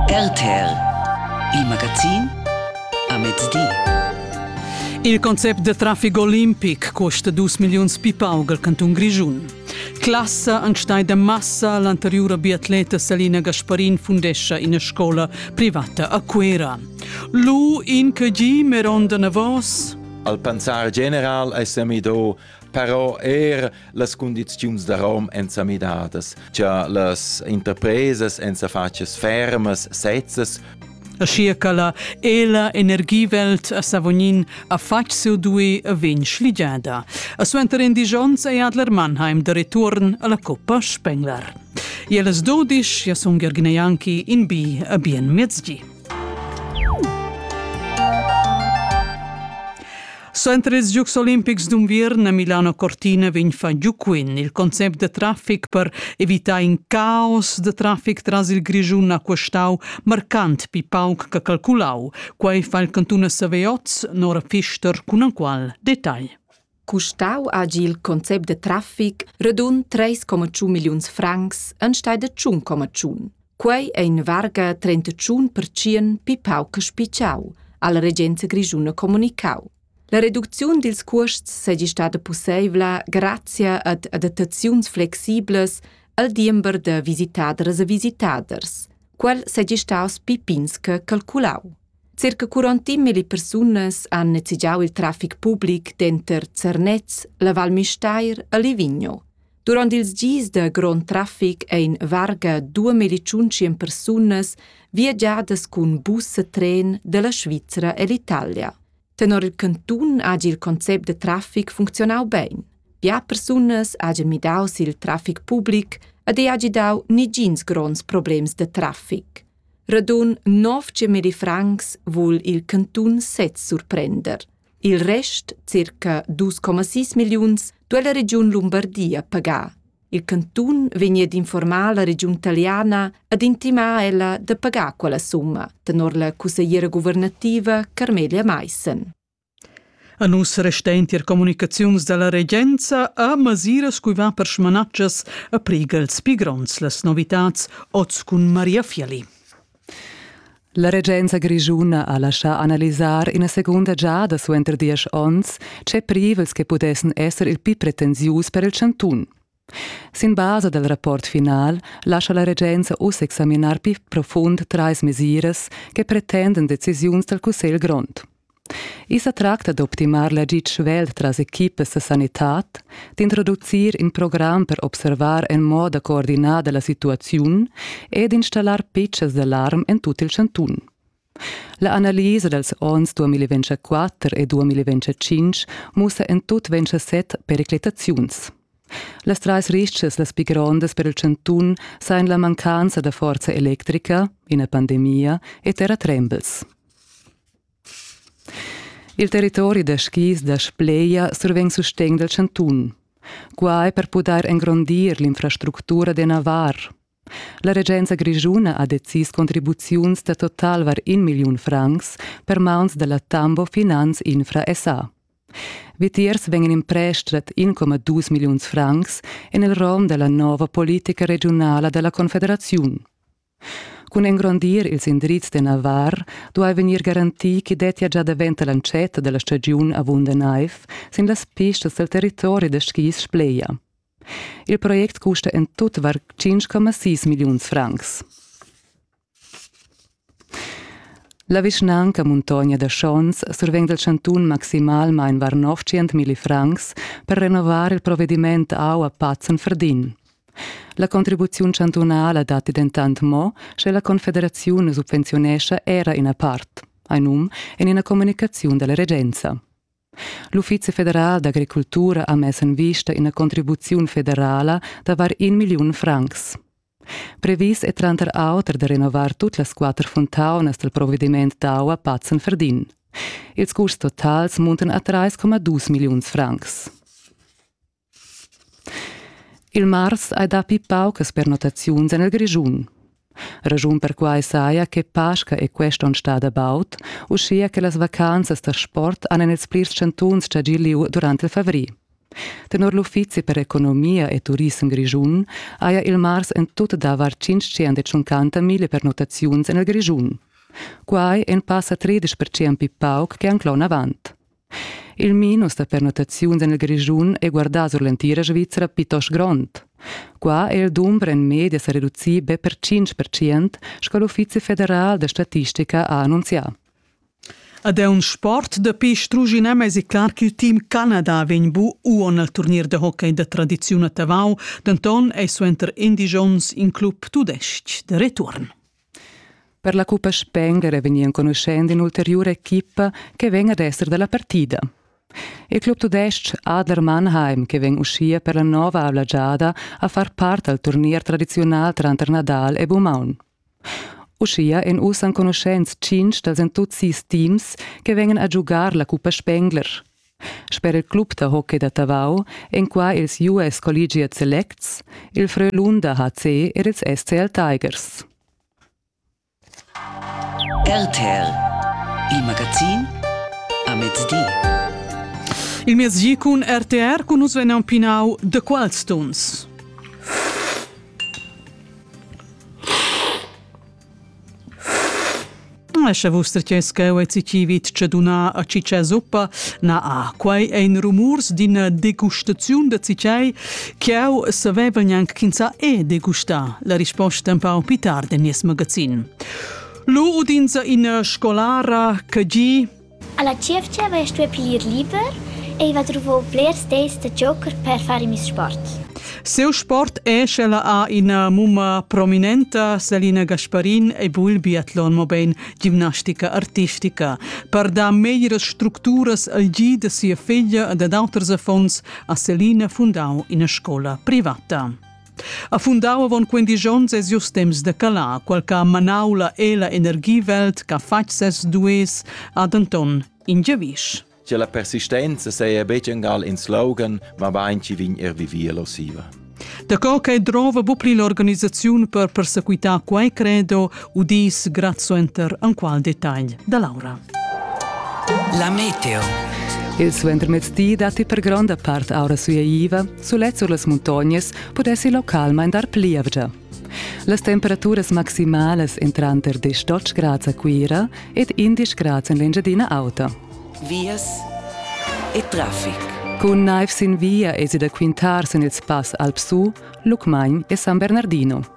RTL, il magazin a mezdi. Il concept da traffic olimpic custa dus milliuns pipauga al cantun Grischun. Classa an stai da massa l'anteriura biatleta Salina Gasparin fundescia ina scola privata a Cuera. Lu in che gi meronda navos? Al pensar general è semido però er las cundiziuns da rom èn sa midadas, cha las interpresas èn sa fatgas fermas, sezzas, Aschia ch'ella e la energiewelt a Savognin ha fatg seu dui a vegn schligiada. A suenter in disch onns è Adler Mannheim de return alla Coppa Spengler. E las dodisch ja sun Gergneianki in bi a bien miezgi. Suenter ils Giocs olimpics d'unviern a Milano Cortina vegn fatg giuquin il concept da traffic per evitar in caos da traffic tras il Grischun ha questau marcant pi pauc che calculau. Quei fa il cantun a Saveoz, Nora Fister cun enqual detagl. Custau hagi il concept da traffic radund 3,5 milliuns francs enstagl da 1,1. Quei ei in varga 31 percient pli pauc che spitgau, ha la regenza grischuna communicau. La reducziun dils cuosts seigi stada pusseivla grazia ad adattaziuns flexiblas al diember da visitadras e visitaders. Quel seigi staus pi pins che calculau. Circa 40 mili persunas han nezigiau il traffic public denter Zernez, la Val Müstair e Livigno. Durant ils gis da grond traffic ein varga duemila tschunschien persunas viagiadas cun bus e tren dalla Svizra ell'Italia. Tenor il cantun hagi il concept da traffic funzionau bein. Bia persunas hagien midau sil traffic public ed ei hagi dau negins gronds problems da traffic. Radun 900 francs vul il cantun sez surprender. Il rest, circa 2,6 milliuns, duai la regiun Lumbardia pagar. Il cantun vegnia d'informar la regiun taliana ed intimar ella da pagar quella summa, tenor la cussegliera guvernativa Carmelia Maissen. A nus resta entir comunicaziuns dalla regenza a masiras cui va per smanatschas a prigels pi gronds las novitats oz cun Maria Fiali. La regenza grischuna ha laschà analisar ina segunda giada suenter diesch onns tge privels che pudessan esser il pli pretensius per il chantun. Sin basa dal rapport final lascha la regenza uss examinar pli profund trais mesiras che pretendan decisiuns dal cussegl grond. I sa tracta d'optimar l'agid svelt tras equipas da sanitad, d'introducir in program per observar en moda coordinada la situaziun e d'installar pitschas d'alarm en tut il chantun. La analisa dals onns 2024 e 2025 mussa en tut 27 periclitaziuns. Las trais ristgas las pli grondas per il chantun sajan la mancanza da forza electrica, ina pandemia e terratrembels. Il territori da skis da Spleia survegn sustegn dal chantun. Qua è per pudair engrondir l'infrastructura da navar. La regenza grischuna ha decis contribuziuns da total var in milliun francs per mauns da la Tambo Finanz Infra SA. Vitiers vegn imprestrat 1,2 milliuns francs en il rom da la nova politica regiunala da la Confederaziun. Cun engrondir ils indrizs de Navar duai vegnir garantì ch'i dettia gia davent l'entschetta della stagiun avunda naiv sin las pistas del territori da skis Spleia. Il project custa en tutvar 5,6 milliuns francs. La vischnanca Muntogna da Schons survegn dal chantun maximalmain var 900 milli francs per renovar il provvediment aua Patzen Verdin. La contribuziun chantunala datti dentant mo, sche la Confederaziun subvenziunescha era ina part, ein um, en ina communicaziun dalla regenza. L'Uffizi federal d'agricultura ha mess en vista ina contribuziun federala da var in milliun francs. Previs è tranter auter da renovar tut las quatter fontaunas dal provvediment d'aua Patzen Verdin. Ils curs totals muntan a 3,2 milliuns francs. Il mars hai dapi paucas pernottaziuns en il Grischun. Raschun per quai saja che Pasca è quest onn stada baud, uschia che las vacanzas da sport han en ils plirs chantuns chagì lieu durant il favrer. Tenor l'Uffizi per economia e turissem grischun haja il mars en tut davar 550.000 pernottaziuns en il Grischun. Quai è in passa 30% pli pauc che anc l'onn avant. Il minus da pernottaziuns en il Grischun è guardà sur l'entira Svizra plitost grond. Qua è il dumber en media sa reducì be per 5 percent, sco l'Uffizi federal da statistica ha annunzià. Ad è un sport dapi strugina mes è clar che il team Canada vegn bu uon al turnier de hockey da tradiziun a Tavau, denton ei suenter Indigions in club tudestg de return. Per la Cuppa Spenger vegni enconuschent in'ulteriura equipa che vegn ad esser dalla partida. Il club tudestg Adler Mannheim, che vegn uschia per la nova avla giada a far part al turnier tradiziunal tranter Nadal e Bumaun. Uschia èn uss enconuschents tschintg dals entuzis teams che vegnan a giugar la Cuppa Spengler. Sper il club da hockey da Tavau èn qua ils US Collegiate Selects, il Frölunda HC ed ils SCL Tigers. RTL, il magazin a mezdi. Il mezdi cun RTR cun nus vegnan pinau The Qualstones. Lascha vus tretiers cheu e ci vit che dunna a ciccia zuppa, na a quei ein rumurs d'ina degustaziun da cicei, ch'jau savevan gnanc ch'ins è degustà, la risposta empau pli tard en nies magazin. Lu udinsa ina scolara che gi Alla tgievgia haveva stuiu piglir liber, ei va druvau blers dis da giocher per far in miss sport. Siu sport è sch'ella ha ina mumma prominenta, Selina Gasparin, ei vul biatlon, mobein gimnastica artistica. Per dar meglieras structuras al gi da sia figlia e dad auters affons ha Selina fundau ina scola privata. Ha fundau avon quindisch onns e sius temps de calar, qual che ha manau la ela energiewelt che ha fatg ses dues ha denton in giavisch. Che la persistenza seia betg engal in slogan, ma bain ci vin er vivir losiva. Da co che drova bu pli l'organisaziun per persequitar quai credo udis grazuenter enqual detagl da Laura. La meteo. Il suentermezdi datti per gronda part aura sueiva, sulet sur las muntognas pudessi localmain dar plievgia. Las temperaturas maximalas en tranter 18 grads a Cuira ed 11 grads en l'Engiadina Auta. Vias e traffic. Cun naiv sin via esi da quintar sin il spass Alpsu, Lucmagn e San Bernardino.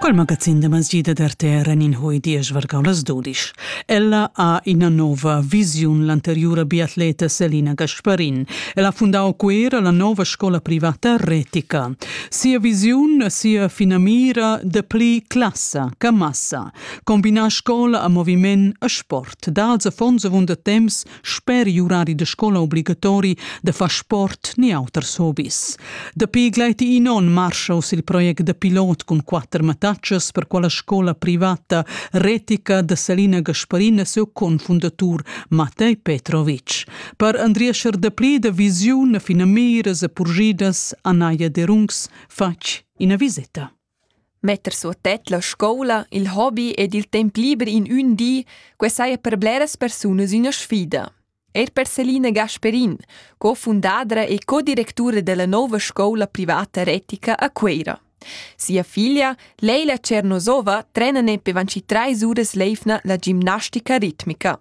Quel magazin da masjida d'RTR en in hui diesch vargau las dudisch. Ella ha ina nova visiun l'anteriura biatleta Selina Gasparin. El ha fundau Cuera la nova scola privata retica. Sia visiun, sia finamira de pli classa che massa. Combinar scola a moviment a sport. Dals affons avunda temps Sper urari da scola obligatori da far sport ni auters hobis. Dapi gleiti in onn marschaus il project da pilot cun quatter mattatschas per quella scola privata retica da Salina Gasparina seu confundatur Matej Petrovic. Per andriescher dapli da visiun a finamiras e purgidas Anaia Derungs fatg ina visita. Metter suot tet la scoula, il hobi ed il temp liber in ün di, que saja per bleras persunas üna sfida. Eir per Selina Gasperin, co-fundadra e co-directura della nouva scoula privata retica a Cueira. Sia figlia, Leila Cernosova, trena ne pe vanci trais uras l'eivna la gimnastica ritmica.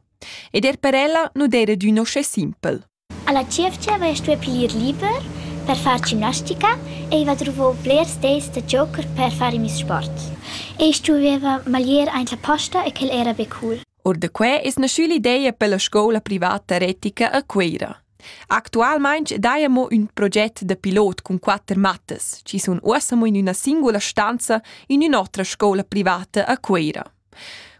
Ed er per ella nu d'eira d'ün uschè simpel. Alla tievgia haveva stuiu piglier liber per far gimnastica, ei va druvau blers dis da giocher per far in miez sport. Ei stueva maglier aint la posta e quel era be cool. Or da quei es naschü l'ideia per la scoula privata retica a Cuera. Actualmaing daja mo ün proget da pilot cun quatter mattas, chi sun uossa mo in üna singula stanza in ün'otra scoula privata a Cuera.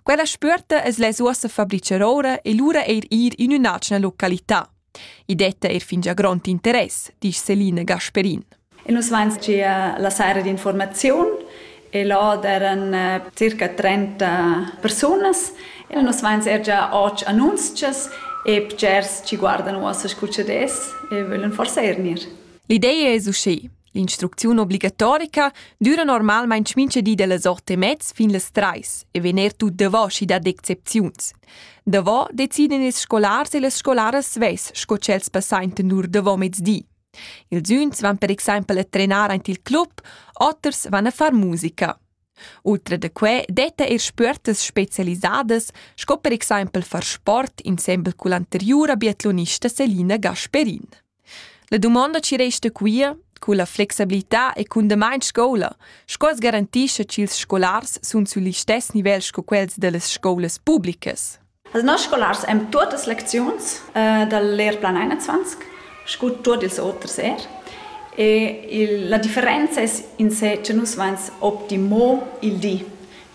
Quella spüerta es lais uossa fabricher oura e lura eir ir in ün'atgna località. I detta eir fingià grond interess, disch Celine Gasperin. E nus vains gia la saira d'informaziun e là d'eran eh, circa 30 persunas e nus vains er già och annunzchas e bgers ci guardan uossa scu ch'ad es e vöglan forsa eir gnir. L'idea es usché. L'instrucziun obligatorica düra normalmain mincha di da las ot e mez fin las trais e vegn er tut davò schi dad excepziuns. Davò deciden ils scolars e las scolaras svess sco ch'els passaintan lur davò mezdi. Ils üns van per exaimpel a trenar aint il club, oters van a far musica. Ultra da quai detta er spüertas spezialisadas, sco per exaimpel far sport insembel cull'anteriura biatlonista Selina Gasperin. La dumonda chi resta quia, culla flexibilità e cun damain scoula, sco as garantischa ch'ils scolars sun sül listess nivel sco quels da las scoulas publicas? Las noss scolars han tuottas lecziuns dal lehrplan 21 scu tuot ils oters er. E la differenza es in se cha nus vains optimo il di.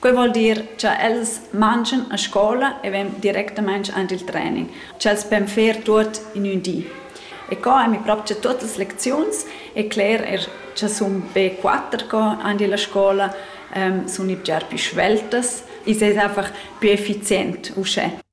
Quei vuol dir cha els mangian a scola e vegn directamaing aint il training, ch'els pon fer tuot in ün di. E co ami propcha tuot las lecziuns e cler eir cha sun be quatter co aint illa scola, sun i bger pü sveltas, i seis einfach pü effizient uschè.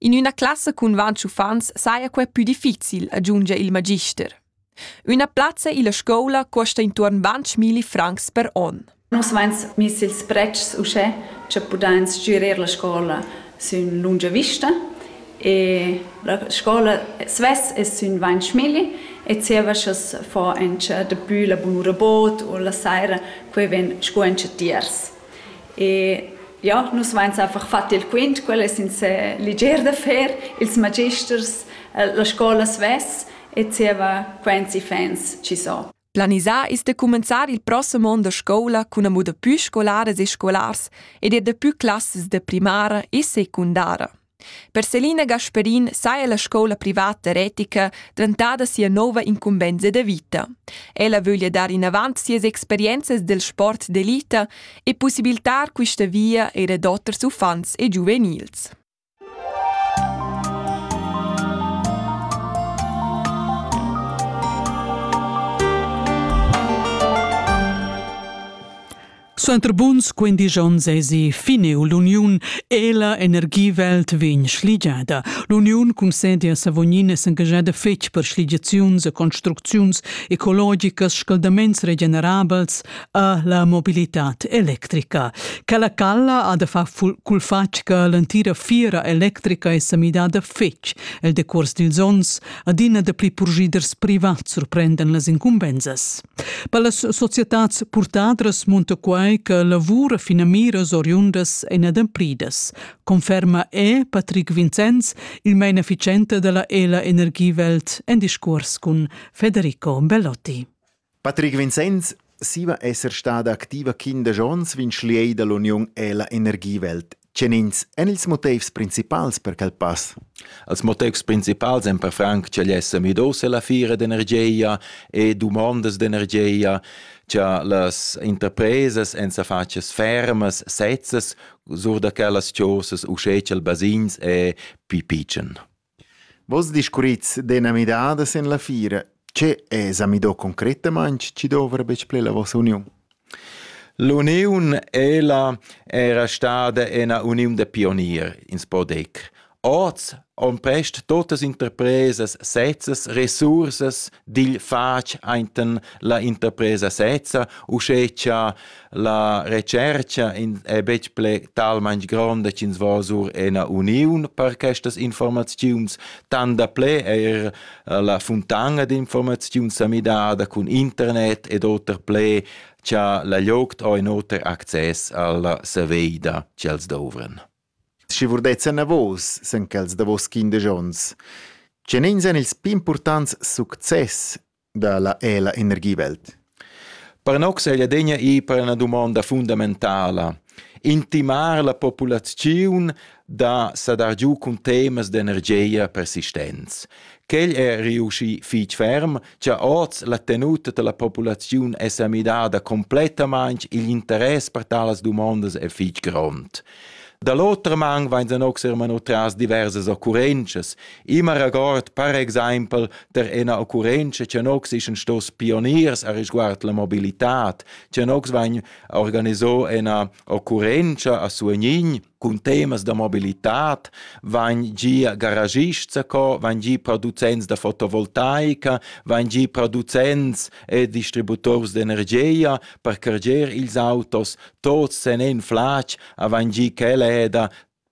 In üna classa cun vantg uffants saja quai pü difficil, aggiungia il magister. Üna plazza illa scoula cuosta intuorn vantg milli francs per on. Nus vains miss ils pretschs uschè cha pudain stgürir la scoula sün lungia vista e la scoula svess es sün vantg milli e zieva cha's fa auncha dapü la bunura bod o la saira quai vegn scu auncha tiers. E ja, nus vains einfach fat il quint, quel es in se liger da fer, ils magisters, la scoula svess e zieva quants iffaints chi so. Planisà ist da cumenzar il prossem on da scoula cun amo da pü scolaras e scolars ed er da pü classas da primara e secundara. Per Selina Gasperin saja la scoula privata retica dentada sia nova incumbensa da vita. Ella vöglia dar inavant sias experienzas del sport d'elita e possibilitar quista via eir ad oters uffants e giuvenils. Suenter buns quindisch onns èsi finiu l'uniun e la energiewelt vegn schligiada. L'uniun concedi a Savognin e s'engaschada fetg per schligiaziuns e construcziuns ecologicas, scaldaments regenerabels e la mobilitad electrica. Quella calla ha da far cul fatg che l'entira fiera electrica è sa midada fetg el decuors dils onns, adina dapli purschiders privats surprendan las incumbensas. Per las societads purtadras munta quai che lavura finamiras oriundas en adempridas, conferma è Patrick Vincenz, il mainefficiente della ELA Energiewelt, en discurs cun Federico Bellotti. Patrick Vincenz siva esser stada activa quindesch onns vin schliei dall'uniun ELA Energiewelt. Tgenins èn ils motivs principals per quel pass? Als motivs principals èn per franc ch'el è sa midos ella fira d'energia e dumondas d'energia, cha las interpresas èn sa fatgas fermas, sezzas sur da quellas chosas uschè cha'l basins è pi pitschen. Vos discurrits d'eina midada sin la fiera. Tge esa midò concretamaing chi dovra be plü la vossa uniun? L'uniun ella era stada üna uniun da pionier, ins po dir. Oz han prest totas interpresas sezzas resursas digl fatg ainten la interpresa sezza, uschè cha La retschercha è betg ple talmain gronda ch'ins vo sur ena uniun per questas informaziuns, tant da ple eir eh, la funtanga d'informaziuns sa midada cun internet ed oter ple cha la lloc ho in oter access alla saveida ch'els douvren. Schi vurdezza na vos, sen quels davos quindesch ons, che nins èn ils pì importants success dalla è la energiewelt. Per noc seglia degna ir per una domanda fundamentala. Intimar la populaziun da sadar giu cun temas d'energia persistenz. Quel è riusci fich ferm, cha oz la tenuta della populaziun è sa midada completamaing, il interess per talas domandas è fich grond. Da l'otra man vain anoxer mano tras diversas occurrenzas, immer regord per exaimpel der ena occurrenza che nox ischan stos pioniers a risguard la mobilitad, che nox vain organiso ena occurrenza a Suegnin cun temas da mobilitad, vain gia garagists a co, vain gia producents da fotovoltaica, vain gia producents e distributors d'energia per carger ils autos Tuots sen in flatg avain gi ch'ella heda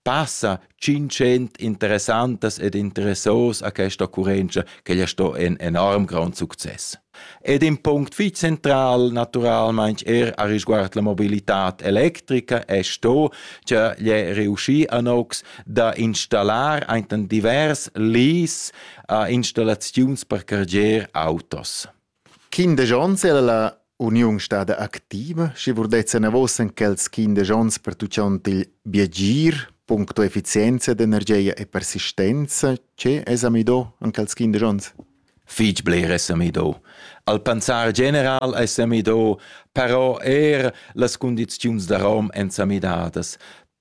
passa tschintschent interessantas ed interessos a questa occurrenza ch'ella ha sto in enorm grond success. Ed in punct fich central naturalmaing er a risguard la mobilità electrica es sto cha l'he riuschi a nox da installar ainten divers lis a installaziuns per carger autos. Quindesch ons ei la uniun stada activa, schi vurdez enavos en quels quindesch ons pertuchont il biagir, puncto efficienza d'energia e persistenza. Che esa midò in quels quindesch ons? Fich bler esa midò. Al pensar general esa midò, però eir las cundiziuns da rom èn sa midadas.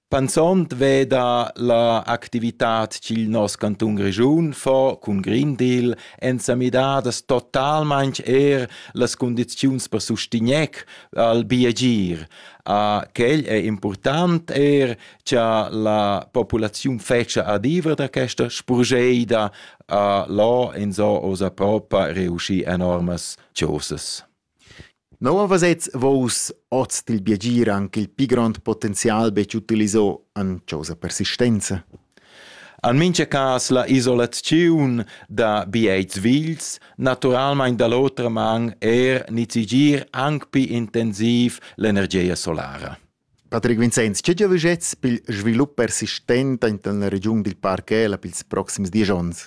Panzond veda la activitat ch'il nos cantun Grischun fa cun Green Deal èn sa midadas totalmain er las cundiziuns per sustegnair al biagir. A quel è important er cha la populaziun fetscha adivra da questa spurgeida a là in so osa propa reuschì enormas chosas. Nua vesets Vus oz dil biagir aunc il pli grond potenzial betg utiliso en causa persistenza? En mintga cas la isolaziun da biets vils, naturalmein da l'otra man er nizigir aunc pli intensiv l'energia solara. Patrick Vincenz, tge giavschets per il svilup persistent en la regiun dil Parchela per ils proxims dies onns?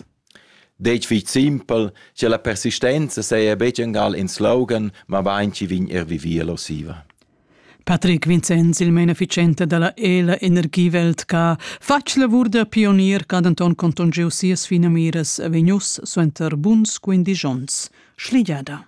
Detg fich simpel, che la persistenza saja betg engal in slogan, ma bain chi vegn er vivir la siva. Patrick Vincenz, il beneficente dalla ELA Energiewelt, ha fatg lavur da pionier ch'ha denton contungiu sias finamiras vegnius suenter buns quindisch onns. Schligiada.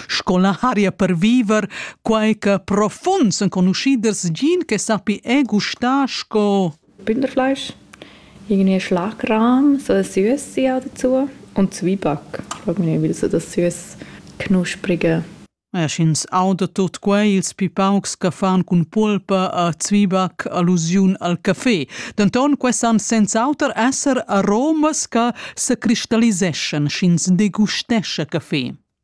sco l'aria per viver, quai che profunds enconuschiders gin che sappi è gustà sco Bünderfleisch, irgendwie Schlagrahm, so ein Süße auch dazu und Zwieback. Ich frage mich nicht, weil so das süß knusprige E sch'ins auda tot quei ils pi paucs che fan cun pulpa a Zwiebach allusiun al café. Denton quei san senz'auter esser aromas che se cristalliseschan sch'ins degustesce café.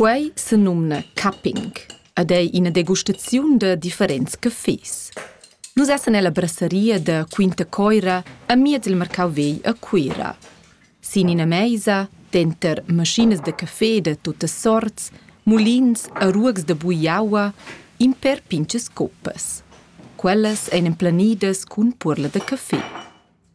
Quei senumna cupping ed ei ina degustaziun da differents caffés. Nus essan ella brasseria da Quinta Coira amiez il marcau vegl a Cuira. Sin ina meisa, denter maschinas da caffé da tuttas sorts, mulins e ruogs da bugliaua, in pèr pintgas coppas. Quellas ein emplanidas cun puorla da caffé.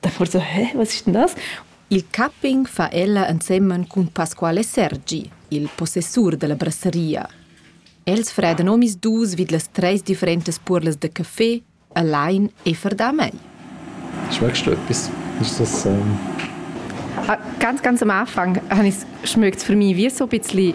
Da forza, hä, was ist denn das? Il capping fa ella ensemen cun Pasquale Sergi, il possessur dalla brasseria. Els fredan omis dus vid las treis differentas puorlas da caffé, allein e verdà mei. Schmeckst du etwas? Ist das ähm... Ah, ganz, ganz am Anfang habe ich es für mich wie so ein bisschen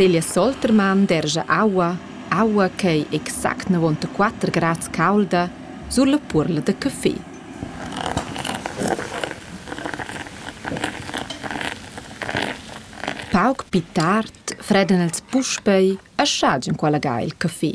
Celia Soltermann dergia aua, aua ch'ei exact navontaquater grads caulda sulla puorla da caffé. Pauc pli tard fredan els puspei a schaz enqual ga il caffé.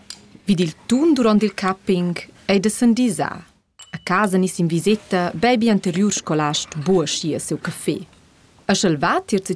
Vid il tun duront il capping ei da sendisar. A casa niss in viseta bebi anteriur scolast buca sia siu café. E sch'el va tier ti